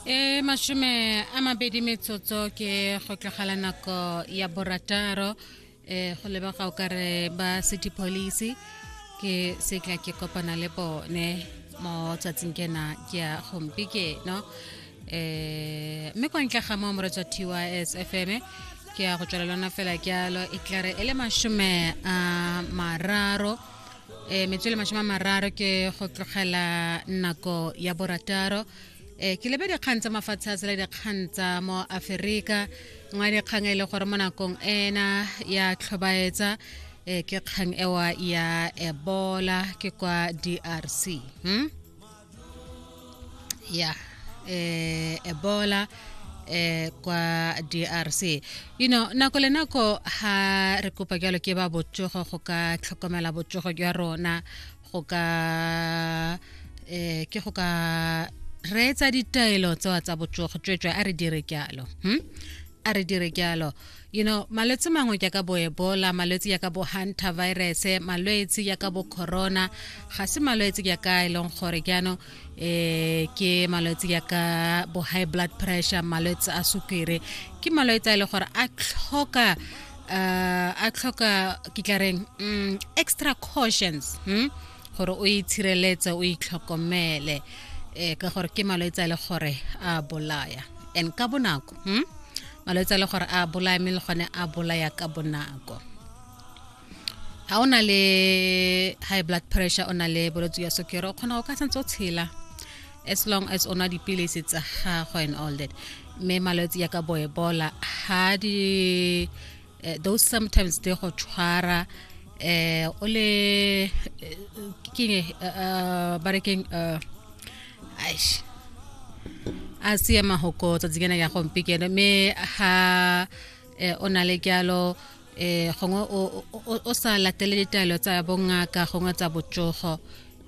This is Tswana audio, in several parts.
e mashome a mabedi metsotso ke go tlogela nako ya borataro um go leba ga o ka re ba city police ke se tla ke kopana le bone mo tsatsing kena ke a gompi ke no um mme kwa ntle ga mo moretswa tys f m ke ya go tswela lona fela jalo e tlare e le mashome a mararo e metswele mashome a mararo ke go tlogela nako ya borataro e ke lebe dikgang tsa mafatshe a tsela dikgang tsa mo aferika nngwe dikgang e le gore mo nakong ena ya tlhobaetsa e ke kgang ewa ya ebola ke kwa drc hmm? yeah eh, ebola eh kwa DRC you know nako le nako ha re kopa jalo ke ba botsogo go ka tlhokomela botsogo jwa rona go ka eh ke go ka reetsa ditaelo tsewa tsa botsogo tswetswe a re dire jalo hmm? a re dire jalo you know malwetse mangwe jaaka bo ebola malwetse jaaka bo hunter virus malwetse jaaka bo corona ga se malwetse jaaka e leng gore jaanong um ke malwetse jaaka bo high blood pressure malwetse a sukiri ke malwetse a e leng gore a tlhoka um a tlhoka ke tla reng um extra cautions hmm? gore o itshireletse o itlhokomele um ka gore ke malwetse a e le gore a bolaya and ka bonako hmm? malwetse a le gore a bolaya mme le gone a bolaya ka bonako ga o na le high blood pressure o na le bolwetse ya sokere o kgona go ka santse o tshela as long as o nwa dipilisi tsa gago and all that mme malwetse ya ka bo ebola ga di uh, those sometimes they go tshwara eh o le eh, ke ne eh, ba re keng eh, aish a siya mahoko tsa tsena ya gompi kene me ha o na le kyalo eh gongwe o sa latele ditaelo tsa bongaka gongwe tsa botsogo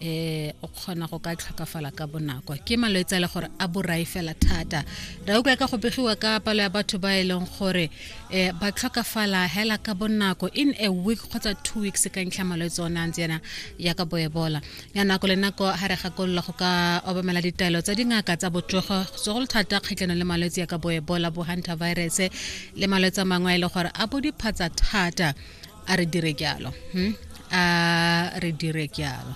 eh o kgona go ka tlhokafala ka bonako ke malwetse a le gore a borai fela thata ra utlwa ka go begiwa ka palo ya batho ba e leng gore eh ba tlhokafala hela ka bonako in a week kgotsa two weeks ka ntlha malwetse one a ntse yana ya ka boebola ya nako le nako ga re gakolola go ka obamela ditaelo tsa dingaka tsa botsogo segolo thata kgatlhanong le malwetse ya ka boebola bo hunter virus le malwetse a mangwe a e leng gore a bo diphatsa thata a re dire jalo hmm? a re dire jalo